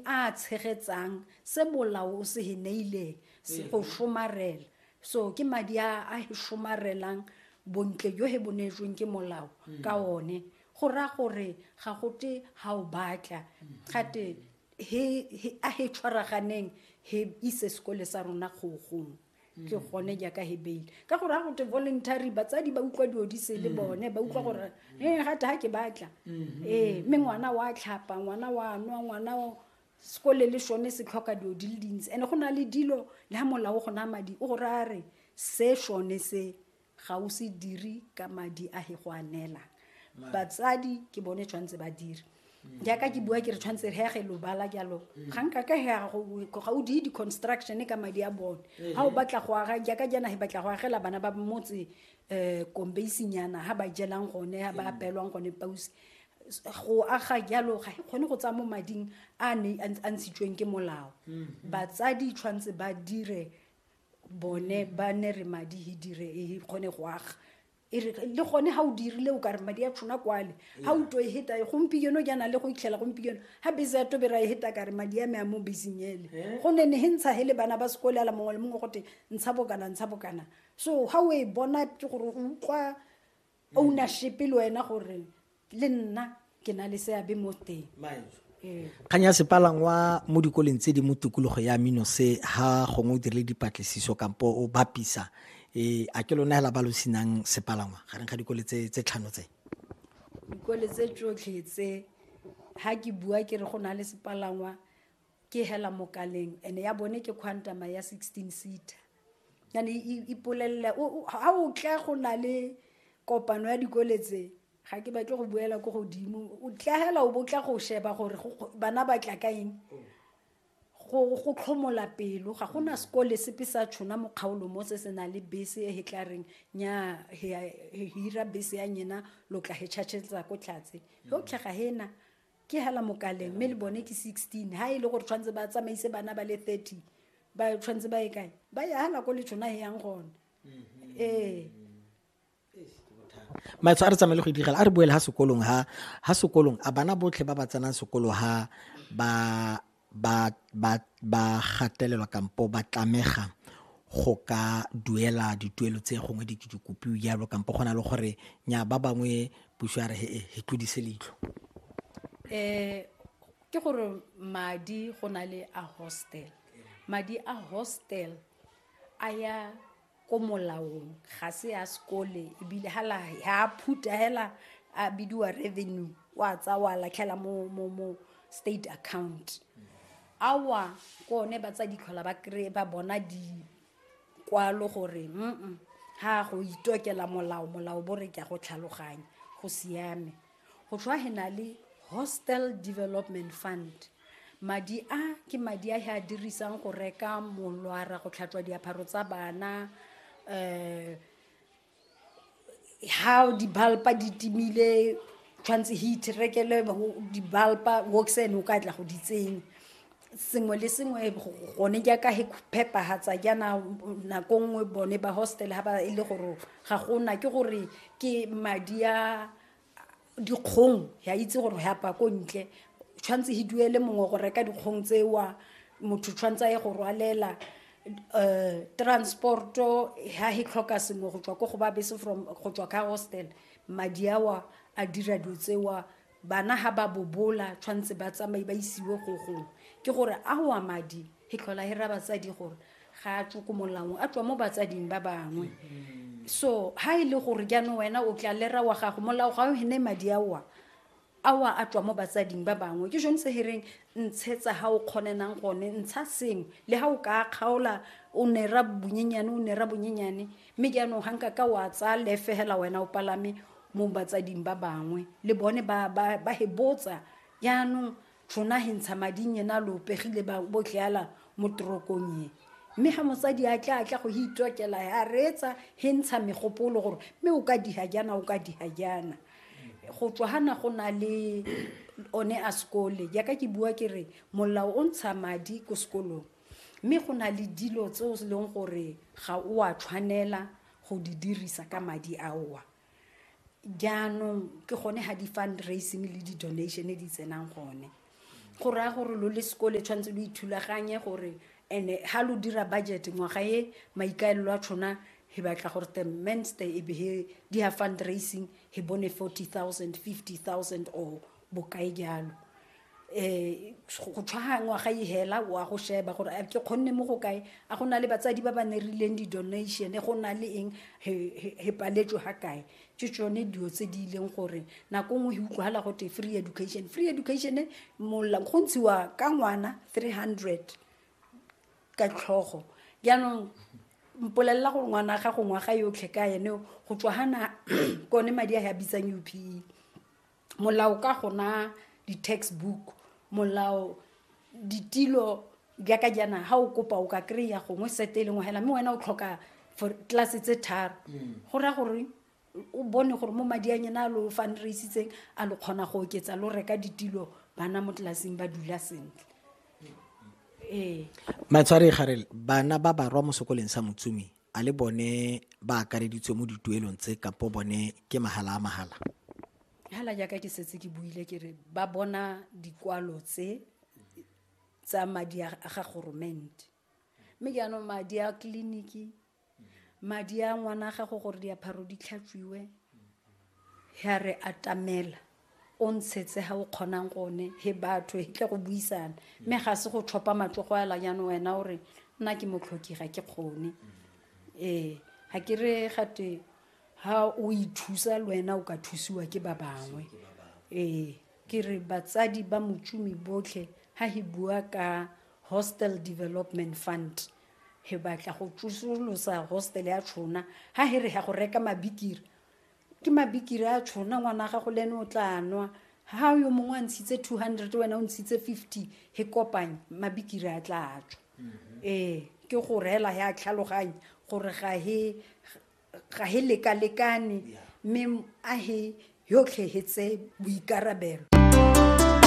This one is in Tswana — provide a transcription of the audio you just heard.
a tshegetsang se molao o se he neileng se go mm-hmm. somarela so ke madi a a he somarelang bontle jo he bonetsweng ke molao mm-hmm. ka one go ra gore ga gote ga o batla mm-hmm. gate a he tshwaraganeng he ise sekole sa rona kgogong ke gone jaaka he bail ka gore ga gote voluntary batsadi ba utlwa dilo di se le mm. bone ba utlwa mm. gore e eh, gate ga ke batla mm-hmm. ee mme ngwana wa tlhapa ngwana wa nwa ngwana sekole le sone se tlhoka dilo di le dintsi and-e go na le dilo le ga molao go na madi o gore a re se sone se ga o se dire ka madi a he go a neela batsadi ke bone tshwanetse ba dire jaaka ke bua ke re tshwanetse re yage lobala jalo ga nka ka hega ga o die di-construction ka madi a bone ga o batla go aga jaaka jana he batla go agela bana ba motse um kombeisinyana ga ba jelang gone ga ba apelwang gone pausi go aga jalo ga e kgone go tsaya mo mading a ne a ntshitsweng ke molao batsadi tshwanetse ba dire bone ba ne re madi e dire e kgone go aga e re le gone ga o dirile o ka re madi a tshona kwale ga o to e heta e gompieno ke na le go itlhela gompieno ga bese ya tobera e heta ka re madi a me a mo beseng ele eh? go ne ne he ntsha he le bana ba sekole ala mongwe le mongwe gote ntsha bokana ntsha bokana so ga o e bona ke gore o utlwa ownership le wena gore le nna ke na le seabe mo teng ee. kgang ya sepalangwa mo dikoleng tse di mo tikologo ya mino se ha gongwe o dirile dipatlisiso kampo o bapisa um a ke lona fela ba lo senang sepalangwa gareng ga dikole tse tlhano tse dikole tse tsotlhe tse ga ke bua ke re go na le sepalangwa ke hela mokaleng and ya bone ke quantama ya 16 seater yane ipolelele ga o tla go na le kopano ya dikole tse ga ke batle go buela ko godimo o tlagela o botla go sheba gore bana ba tla ka eng go tlhomola pelo ga go na sekole sepe sa tshona mo kgaolo mo se se na le bese e he tla reng nya hira bese ya nyena lo tla he tšhatšhetsa ko tlhatse yo tlhaga hena ke hela mokaleng mme le bone ke 16 ha e le gore tshwanetse ba tsamaise bana ba le 30 ba tshwanetse ba e kae ba ya hela ko letshona he yang gone mm-hmm. ee maetsho a re tsamaye le go idigela a re boele ha sekolong ha ha sekolong a bana botlhe ba ba tsenang sekolo ha ba ba ba ba gatelelwa kampo ba tlamega go ka duela dituelo tse gongwe di di kopiwe jalo kampo go na le gore nya ba bangwe puso ya re he he tlodise leitlho eh ke gore madi go na le a hostel madi a hostel a ya ko molaong ga se ya sekole ebile ha la ha a phuta hela a bidiwa revenue wa tsa wa latlhela mo mo mo state account awa ke one ba tsa ditlhola ba kry ba bona dikwalo gore mm ha go itokela molao molao bo re ke a go tlhaloganya go siame go tlhwa he na le hostel development fund madi a ke madi a he a dirisang go reka molwara go tlhatswa diapharo tsa bana um ha dibalpa di timile tshwanetse heat rekele dibalpa woxen o ka tla go di tsenya sengwe le sengwe gone jaaka he phepagatsa jaana nako nngwe bone ba hostel ga ba e le gore ga gona ke gore ke madi a dikgong ya itse gore ya pa ko ntle tshwanetse he duele mongwe go reka dikgong tsewa motho tshwanetse a ye go rwalela um transporto ha he tlhoka sengwe go tswa ko go ba bese from go tswa ka hostel madi awa a dira dilo tsewa bana ha ba bobola tshwanetse ba tsamaye ba isiwe go gongwe ke gore a wa madi e tlhola e ra batsadi gore ga a tswe ko molaong a tswa mo batsading ba bangwe mm-hmm. so ha e le gore jaanong wena o tla lera wa gago molao ga o hene madi aowa awa a tswa mo batsading ba bangwe ke jone se hereng ntshetsa ga o kgonenang gone ntsha sengwe le ga o ka kgaola o nera bonyenyane o nera bonyenyane mme jaanong ga nka ka wa tsaya lefegela wena o palame mo batsading ba bangwe le bone ba hebotsa jaanong tšhona he ntsha mading yena lo pegile ba bo tleala mo torokong ye mme ga mosadi a tla a tla go he itokela a reetsa he ntsha megopolo gore mme o ka diha jana o ka diha jana go tswa gana go na le one a sekole jaaka ke bua ke re molao o ntsha madi ko sekolong mme go na le dilo tse o leng gore ga o a tshwanela go di dirisa ka madi aowa jaanong ke gone ga di-fundraising le di-donation di tsenang gone go raya gore lo le sekole tshwanetse lo ithulaganye gore and-e ga lo dira budget ngwaga e maikaelelo a tshona he batla gore the menster e be he di ya fundraising he bone forty thousand fifty thousand or bokae jalo um go tshwaga ngwaga e hela o a go sheba gore ke kgonne mo go kae a go na le batsadi ba ba ne rileng di-donation go na le eng he paletswe ga kae ke tsone dilo tse di ileng gore nako nngwe e utlwagala gote free education free education molang go ntshiwa ka ngwana three hundred ka tlhogo jaanong mpolelela gore ngwana ga go ngwaga yotlhe ka ene go tswa gana kone madi a ya bitsang upe molao ka gona di-text book molao ditilo jaaka jaana ga o kopa o ka kry-a gongwe sete e lengwe fela mme wena o tlhoka for tlase tse tharo mm. go raya gore o bone gore mo madi a nyena a lo fundraisitseng a lo kgona go oketsa lo reka ditilo bana mo tlelaseng ba dula sentle ee matshware garele bana ba barwa mo sekoleng sa motsumi a le bone ba akareditswe mo dituelong tse kapo bone ke mahala a mahala hala jaaka ke setse ke buile ke re ba bona dikwalo tse tsa madi a ga goromente mme ke anong madi a tleliniki madi a ngwana a gago gore diapharo di tlhatswiwe ya re atamela o ntshetse ga o kgonang gone he batho he tle go buisana mme ga se go tlhopha matlogo a lanyano wena o re nna ke motlhoki ga ke kgone ee ga ke re gate ga o ithusa le wena o ka thusiwa ke ba bangwe ee ke re batsadi ba motšomi botlhe ga he bua ka hostel development fund he batla go tsosolosa hostel ya tshona ga he re ya go reka mabikiri ke mabikiri a tšhona ngwana gago le ene o tla nwa ha yo mongwe a ntshitse two hundred wena o ntshitse fifty he kopanye mabikiri a tla tswa mm-hmm. ee ke go reela he a tlhaloganye gore ga he lekalekane mme a he yotlhe he tse boikarabelo